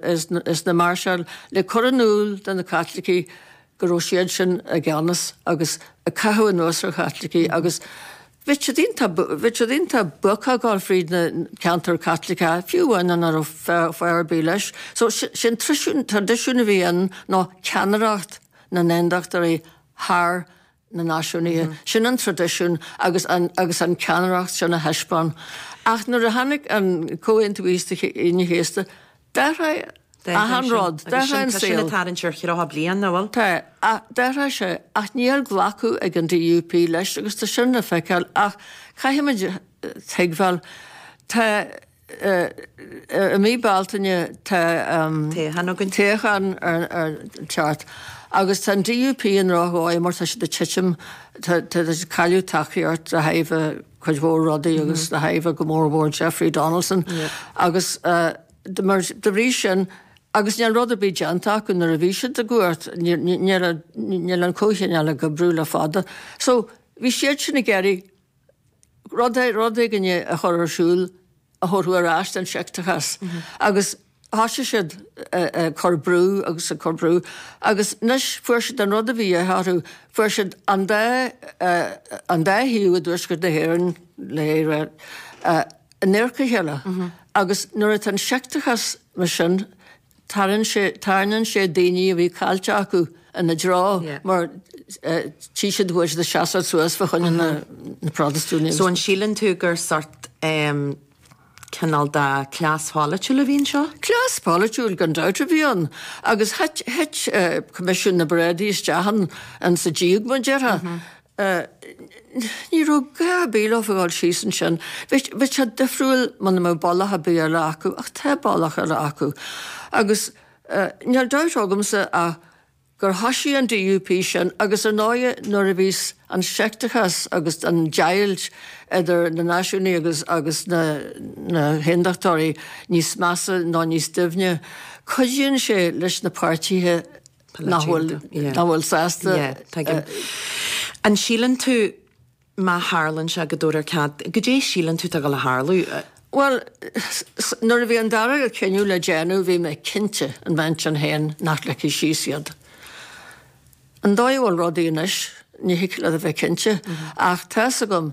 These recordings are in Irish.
is na máirseáil le cur in iúl do na Caitlicigh go raibh siad sin i gceannas agus ag caitheamh anuas ar Chaitlicigh agus bhí siad iontach buartha ag dul fríd na ceantair Chaitliceacha, fiú amháin muna raibh fáth ar bith leis. So sin traidisiún a bhí ann ná ceannaireacht na nAondachtóirí thar na náisiúnaithe. Sin an traidisiún agus an cheannaireacht sin a thaispeáin. Ach nuair a tháinig an Comhaontú Aoine an Chéasta, d'athraigh achan rud. D'athraigh an saol. Tá sin ag tarraingt ar thríocha bliain, nach bhfuil? Tá. D'athraigh sé. Ach níl glactha ag an DUP leis agus tá sin le feiceáil. Ach caithfimid a thuigbheáil, tá. I mí Bealtaine tá toghchán ag teacht agus tá an DUP i ndroch-dhóigh mar tá siad ag titim, táid ag cailleadh tacaíocht de thairbhe cuid mhór rudaí agus de thairbhe go mór mhór Jeffrey Donaldson agus de bhrí sin, agus níl rud ar bith déanta acu nuair a bhí siad i gcumhacht, níl an Comhthionól ag oibriú le fada. So bhí siad sin ag iarraidh rud éigin a chur ar siúl a thabharfadh ar ais an seicteachas agus thoisigh siad ag cur brú agus ag cur brú agus anois fuair siad an rud a bhí a dhíth orthu, fuair siad an dá, an dá thaobh i dTuaisceart na hÉireann, le hÉire, in adharca a chéile agus nuair atá an seicteachas mar sin, tarraing sé, tarraingeann sé daoine a bhí caillte acu ina dtreo mar tí siad go bhfuil siad ag seasamh suas fá choinne na Protastúnaigh. So an síleann tú gur sórt cineál de cleas pholaitiúil a bhí anseo? Cleas polaitiúil gan dabht a bhí ann agus thit Coimisiún na bParáidí isteach ann sa díog, mar a déarfá. a. Ní raibh gá ar bith leofa a dhul síos ansin. Bheadh sé difriúil muna mbeadh bealach ar bith eile acu, ach tá bealach eile acu. Agus níl dabht agamsa ach gur thoisigh an DUP sin agus ar ndóighe nuair a bhíos an seicteachas agus an deighilt idir na náisiúnaigh agus na haondachtóirí níos measa nó níos doimhne, cuidíonn sé leis na páirtithe Nach bhfuil, nach bhfuil sásta. An síleann tú má tharlaíonn sé go dtabharfar cead, goidé a shíleann tú atá ag gabháil a tharlú? Bhuel, nuair a bhí an dara cinneadh le déanamh bhí mé cinnte, i m'intinn féin, nach ligfí síos iad. An dóigh a bhfuil rudaí anois, ní thig leat a bheith cinnte. Ach tá's agam,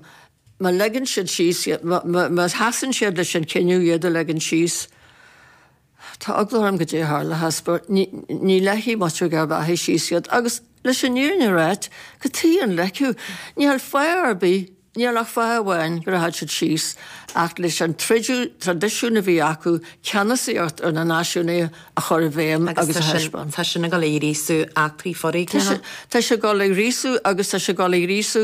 má leigeann siad síos iad, má sheasann siad leis an cinneadh iad a leigean síos, Tá eagla orm goidé a tharlóchas mar ní ligfidh muintir Gharbh Achaidh síos iad, agus leis an fhírinne a ráit, cad chuige a ligfeadh, níl fáth ar bith, níl ach fáth amháin go rachaidh siad síos, ach leis an traidisiún a bhí acu ceannasaíocht ar na náisiúnaithe a chur i bhfeidhm agus a thaispeáint. Tá sin ag dul ag gríosú eachtraí foréigneacha. Tá sé ag dul ag gríosú agus tá sé ag dul ag gríosú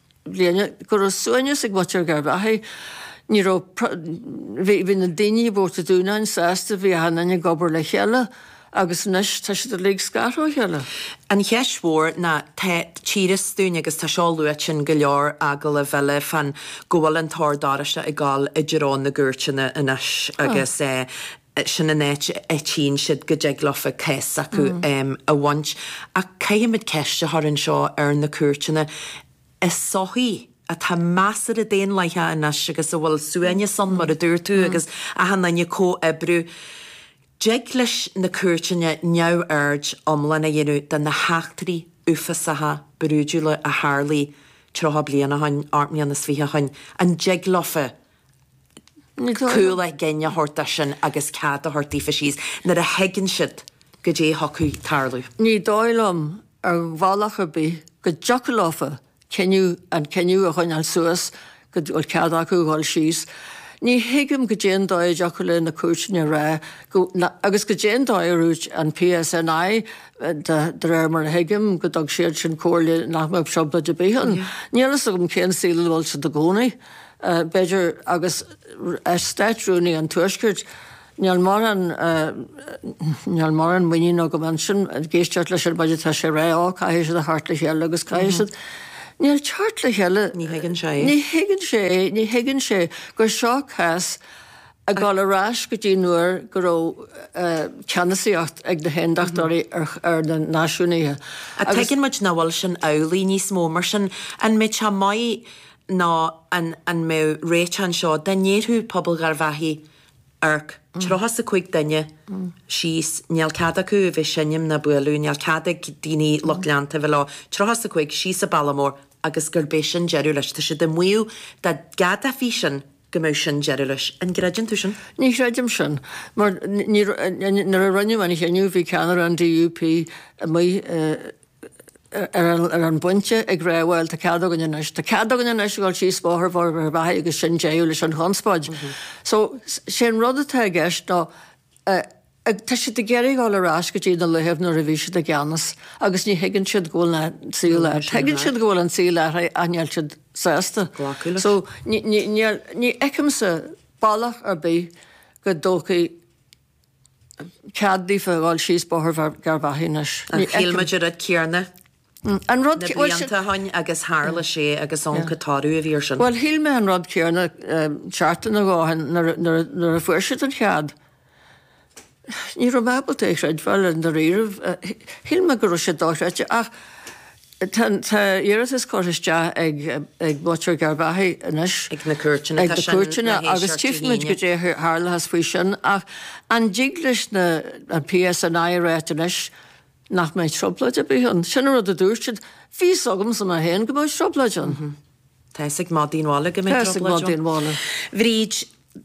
bliana, go raibh suaimhneas ag muintir Gharbh Achaidh. Ní raibh, bhí na daoine i bPort a' Dúnáin sásta, bhí achan duine ag obair le chéile agus anois tá siad uilig scartha ó chéile. An cheist mhór ná tá tchítear dúinn agus tá seo luaite in go leor agallaimh eile fan go bhfuil an tOrd Oráisteach ag dul i dtreo na gcúirteanna anois agus sin an áit a áitíonn siad go dtig leofa an cás acu, a bhaint. Ach caithfimid ceist a chur anseo ar na cúirteanna, i sochaí atá measartha daonlathaithe anois agus a bhfuil suaimhneas ann, mar a dúirt tú, agus achan duine ag comhoibriú, an dtig leis na cúirteanna neamhaird iomlán a dhéanamh de na heachtraí uafásacha, brúidiúla a tharlaigh tríocha bliain ó shin, ocht mbliana is fiche ó shin? An dtig leofa? cúl a gcinn a thabhairt dó sin agus cead a thabhairt daofa síos nuair a thuigeann siad goidé a thiocfadh tarlú. Ní dóigh liom ar bhealach ar bith go dtiocfadh leofa cinneadh an cinneadh a choinneáil suas go bhfuil cead acu dhul síos. Ní thuigim goidé an dóigh a dtiocfadh le na cúirteanna a rá go, agus goidé an dóigh a dúirt an PSNI de réir mar a thuigim go dtug siadsan comhairle nach mbeadh trioblóid ar bith ann. Níl a fhios agam cén saol a bhfuil siad ina gcónaí. b'fhéidir, agus ar Státrúnaí an Tuaiscirt, níl mórán, níl mórán muiníne agam annsan, ag éisteacht leis ar mhaidin tá sé a rá, oh, caithfidh siad a theacht le chéile agus caithfidh siad, níl teacht le chéile, ní thuigeann sé é, ní thuigeann sé é, ní thuigeann sé gur seo cás ag dul ar ais go dtí nuair go raibh ceannasaíocht ag na hAondachtóirí ar na Náisiúnaithe. Tuigeann muid nach bhfuil sin amhlaidh níos mó, mar sin an mbeidh sé maith nó an an mbeadh réiteach anseo dá ndéarfadh pobal Gharbh Achaidh, OK, tríocha 's a cúig duine, síos, níl cead acu a bheith seinm ná bualadh, níl cead ag daoine, lucht leanta a bheith leo, tríocha 's a cúig, síos an bealach mór, agus gurb é sin deireadh leis. Tá siad ag maíomh dá gceadófaí sin go mbeadh sin deireadh leis. An gcreideann tú sin? Ní chreidim sin. Mar ní raibh, nuair a rinneadh an chinneadh bhí ceannaire an DUP amuigh, ar an bpointe ag rá, bhuel, tá cead againn anois, tá cead againn anois a dhul síos Bóthar Gharbhachaidh agus sin deireadh leis an chonspóid. So, sé an rud atá i gceist ná, ag, tá siad ag iarraidh dul ar ais go dtí na laethe nuair a bhí siad i gceannas agus ní thuigeann siad go bhfuil an saol athraithe. Tuigeann siad go bhfuil an tsaol athraithe ach níl siad sásta glacadh leis. So, ní, ní, níl, ní fheicimse bealach ar bith go dtabharfar cead daofa a dhul síos Bóthar Gharbhachaidh anois. Ní fheiceann. Shíl muid an rud céarna. An rud. Na blianta ó shin agus tharla sé agus chonaic muid an toradh a bhí ar sin. Bhuel shíl mé an rud céarna seachtain nó dhó ó shin nuair a fuair siad an cead. Ní raibh mé ábalta é chreidbheáil i ndáiríribh. Shíl mé go raibh sé dochreidte ach Tá iarratas curtha isteach ag muintir Gharbhachaidh anois chuig na cúirteanna agus tchífimid cad é a tharlóchas faoi sin. Ach an dtig leis an PSNI a rá anois nach mbeidh trioblóid ar bith ann? Sin an rud a dúirt siad. Bhí fhios agamsa mé féin go mbeadh trioblóid ann. Tá fhios ag madaí an bhaile go mbeidh trioblóid ann. A Bhríd,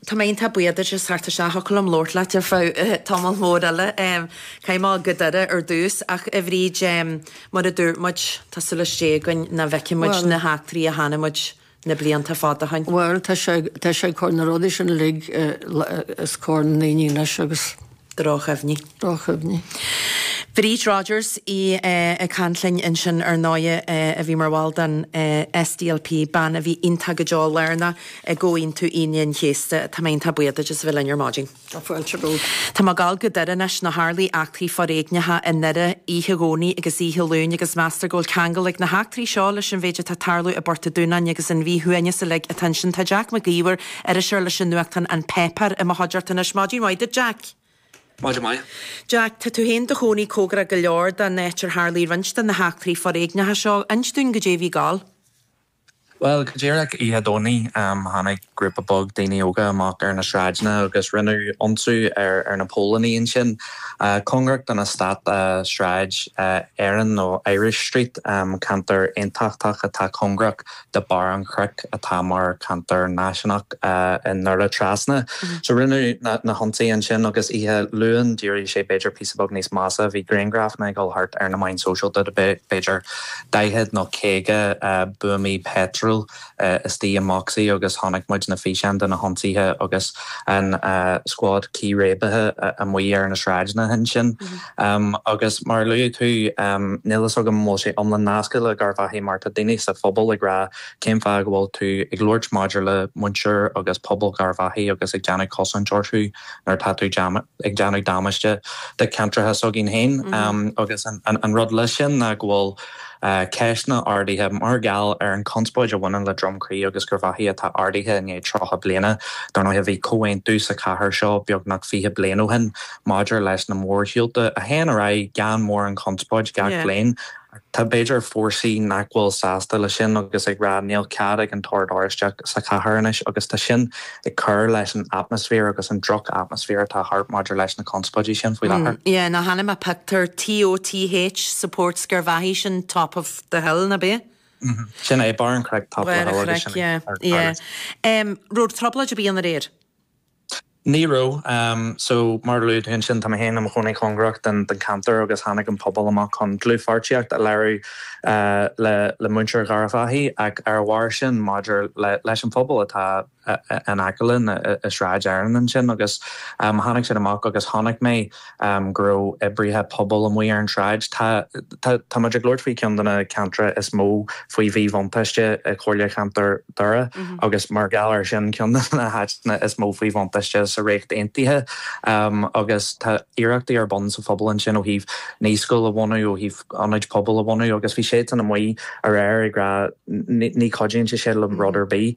Tá mé iontach buíoch duit as teacht isteach, thiocfadh liom labhairt leat ar feadh tamall mhór eile, caithfidh mé a ghabháil go Doire ar dtús, ach a Bhríd, mar a dúirt muid, tá súil as Dia againn nach bhfeicfidh muid na heachtraí a chonaic muid na blianta fada ó shin. Bhuel, tá sé ag cur na rudaí sin uilig os comhair na ndaoine anois agus. Droch-chuimhní. Droch-chuimhní. Bríd Rodgers í ag caint linn ansin ar ndóigh a bhí mar bhall den SDLP, bean a bhí iontach go deo lárnach i gComhaontú Aoine an Chéasta. Tá mé iontach buíoch duit as a bheith linn ar maidin. Tá fáilte romhat. Tá mé ag dul go Doire anois. Nó tharlaigh eachtraí foréigneacha i nDoire oíche Dhomhnaigh agus oíche Luain agus meastar go bhfuil ceangal ag na heachtraí seo leis an mhéid atá ag tarlú i bPort a Dúin agus an mhíshuaimhneas uilig atá ansin. Tá Jack Mac Íomhair Iriseoir leis an nuachtán An Páipéar i mo chuideachta anois. Maidin mhaith duit, Jack. Maidin mhaith. Jack, tá tú féin 'do chónaí comhgarach go leor don áit ar tharlaigh roinnt de na heachtraí foréigneacha seo. Ins dúinn goidé a bhí ag dul. Bhuel, go díreach oíche Dhomhnaigh, tháinig grúpa beag daoine óga amach ar na sráideanna agus rinneadh ionsú ar ar na póilíní ansin, cóngarach don eastát Sráid Éireann nó Irish Street, ceantar aontachtach atá cóngarach do Bharr an Chnoic atá mar ceantar náisiúnach i nDoire Trasna. So rinneadh na hionsaithe ansin agus oíche Luain d'éirigh sé b'fhéidir píosa beag níos measa. Bhí grianghrafanna ag dul thart ar na meáin shóisialta de b'fhéidir 40 nó 50 buamaí peitril istigh i mbocsaí agus chonaic muid na físeáin de na hionsaithe agus an scuad círéibithe amuigh ar na sráideanna ansin. Agus mar a luaigh tú, níl fhios agam an bhfuil sé iomlán nasctha le Garvaghy mar tá daoine sa phobal ag rá cén fáth go bhfuil tú ag labhairt maidir le muintir agus pobal Garvaghy agus ag déanamh cosaint orthu nuair atá tú ag déanamh damáiste do ceantracha s'againn féin. Agus an rud leis sin ná go bhfuil ceisteanna ardaithe mar gheall ar an chonspóid a bhaineann le Drumcree agus Garvaghy atá ardaithe i ndiaidh tríocha bliana. Dar ndóigh bhí comhaontú sa chathair seo beagnach fiche bliain ó shin. Maidir leis na mórshiúlta, a théann ar aghaidh gan mórán conspóid gach bliain, tá b'fhéidir fórsaí nach bhfuil sásta leis sin agus ag rá níl cead ag an tOrd Oráisteach sa chathair anois agus tá sin ag cur leis an atmaisféar agus an droch-atmaisféar atá thart maidir leis na conspóidí sin faoi láthair. Yeah, chonaic mé pictiúr TOTH supports Garvaghy sin Top of the Hill, nach b'ea? Mhm. Sin é, Barr an Chnoic, Top of the Hill agus sin é. Barr an Chnoic, yeah. Yeah. Um, raibh trioblóid ar bith ann aréir? Ní raibh. So, mar a luaigh tú ansin, tá mé féin i mo chónaí cóngarach don ceantar agus tháinig an pobal amach chun dlúthpháirtíocht a léiriú le muintir Garvaghy ach ar a bharr sin maidir leis an phobal atá in aice linn i Sráid Éireann ansin agus tháinig siad amach agus chonaic mé go raibh oibrithe pobail amuigh ar an tsráid. Tá muid ag labhairt faoi cheann de na ceantracha is mó faoi mhíbhuntáiste i gComhairle Cheantar Dhoire agus mar gheall air sin ceann de na háiteanna is mó faoi bhuntáiste sa Ríocht Aontaithe agus tá iarrachtaí ar bun sa phobal ansin ó thaobh naíscoil a bhunú, ó thaobh ionaid pobail a bhunú agus bhí siadsan amuigh aréir ag rá 'ní chuidíonn sé sin le rud ar bith'.